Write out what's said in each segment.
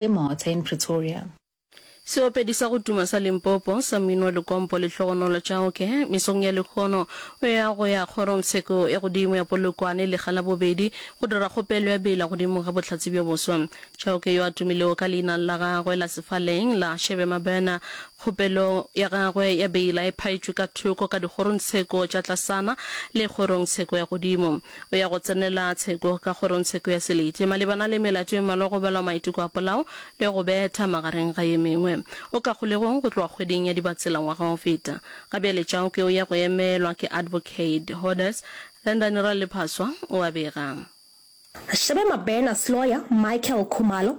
e Martyr in Pretoria. Seopedi sa go tuma sa Limpopo sa mmino wa likompo le hlogonolo tša oke mesong ya lekgono o ya go ya kgorongtsheko ya godimo ya Polokwane lega la bobedi go dira kgopelo ya bela godimo ga bohlatse bjo boswa. Chauke yo a tumilego ka leina la gagwe la sefaleng la Shebe Mabena, kgopelo ya gagwe ya bela e phaetšwe ka thoko ka dikgorongtsheko tša tlasana le kgorongtsheko ya godimo. o ya go tsenela tsheko ka kgorong tsheko ya selete malebana le melato e mmalwa go balwa maiteko a polao le go betha magareng ga ye mengwe o ka kgolegong go tloga kgweding ya Dibatsela ngwaga go feta. Ga bjale Chauke o ya go emelwa ke Advocate Hodes Rendani Raliphaswa, o a bega. Shebe Mabena Sloya, Michael Khumalo,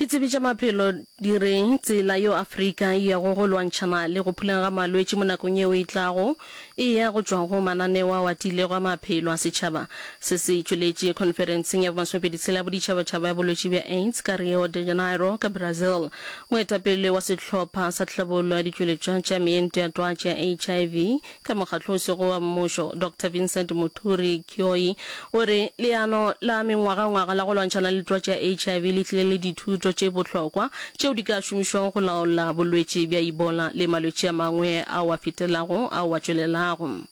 Ditsebi tša maphelo di re tsela yeo Afrika e yago go lwantšhana le go phuleng ga malwetši mo nakong yeo e tlago e ya go tšwa go mananeo ao a tiilego a maphelo a setšhaba. Se se tšweletše khonferenseng ya bomasomepedi tshela ya boditšhabatšhaba ya bolwetši bja AIDS ka Rio de Janeiro ka Brazil. Moetapele wa sehlopha sa tlhabollo ya ditšweletšwa tša meento ya twatši ya HIV, ka mokgatlo o sego wa mmušo, Doctor Vincent Muturi Kioyi o re, Leano la mengwagangwaga la go lwantšhana le twatši ya HIV le tlile le dithuto tše bohlokwa tšeo di ka šomišwago go laola bolwetši bja Ebola le malwetši a mangwe ao a fetelago ao a tšwelelago.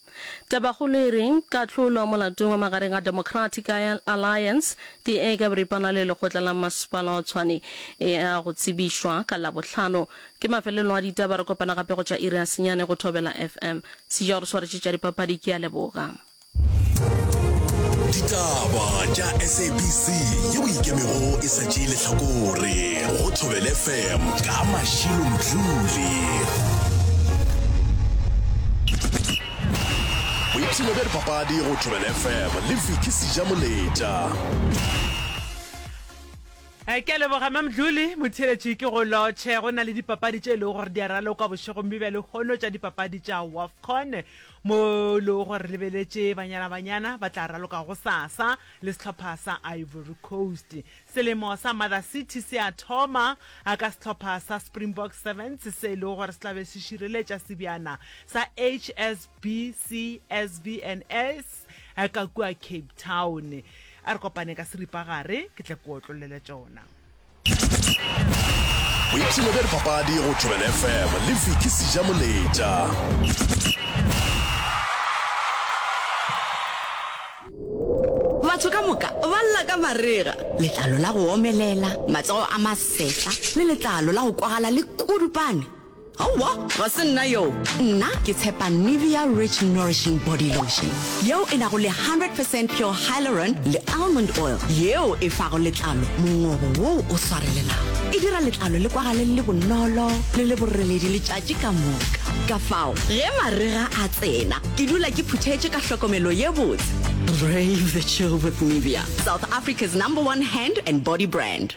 Tabakgolo e re, Kahlolo molatong wa magareng ga Democratic Alliance, DA, ka boripana le Lekgotla la Masepala wa Tshwane e a go tsebišwa ka Labohlano Ke mafelelong a ditaba, re kopana gape go tša iri ya senyane go Thobela FM. Sija o re swaretše tša dipapadi, ke a leboga. Ditaba tša SABC yeo e ikemego e sa tšee lehlakore go Thobela FM ka Mashilo Mdluli. Boipshino bja dipapadi go Thobela FM le Vicky Sija Moletša. Ke a leboga Mamdluli. Motheeletši ke go lotšhe. Go na le dipapadi tše e lego gore di a ralokwa bošegong bjo bja lehono tša dipapadi tša Wafcon mo e lego gore re lebeletše Banyana Banyana ba tla raloka gosasa le sehlopha sa Ivory Coast. Selemo sa Mother City se a thoma ka sehlopha sa Springbok Sevens se e lego gore se tla be se šireletša sebjana sa HSBC SVNS. a ka kua cape town a re kopane ka seripagare ke tla kua otlolele tsona boipshelo bja dipapadi go tšwelele fm le fiki seja moletša batho ka moka ba lla ka marega letlalo la go omelela matsogo a masetla le letlalo la go kwagala le kudupane Aowa, ga se nna yoo. Nna ke tshepa Nivea Rich Nourishing Body Lotion, yeo e nago le 100 percent pure hyaluron le almond oil, yeo e fago letlalo mongobo woo o swarelelago. E dira letlalo le kwagale le le bonolo le le boreledi letšatši ka moka. Ka fao ge marega a tsena, ke dula ke phuthetše ka hlokomelo ye botse. Brave the chill with Nivea, South Africa's number one hand and body brand.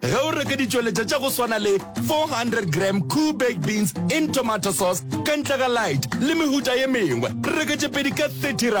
Ge o reke ditšweletša tša go swana le 400 gram Koo baked beans in tomato sauce ka ntle ga light le mehuta ye mengwe, reke tše pedi ka 30 rand.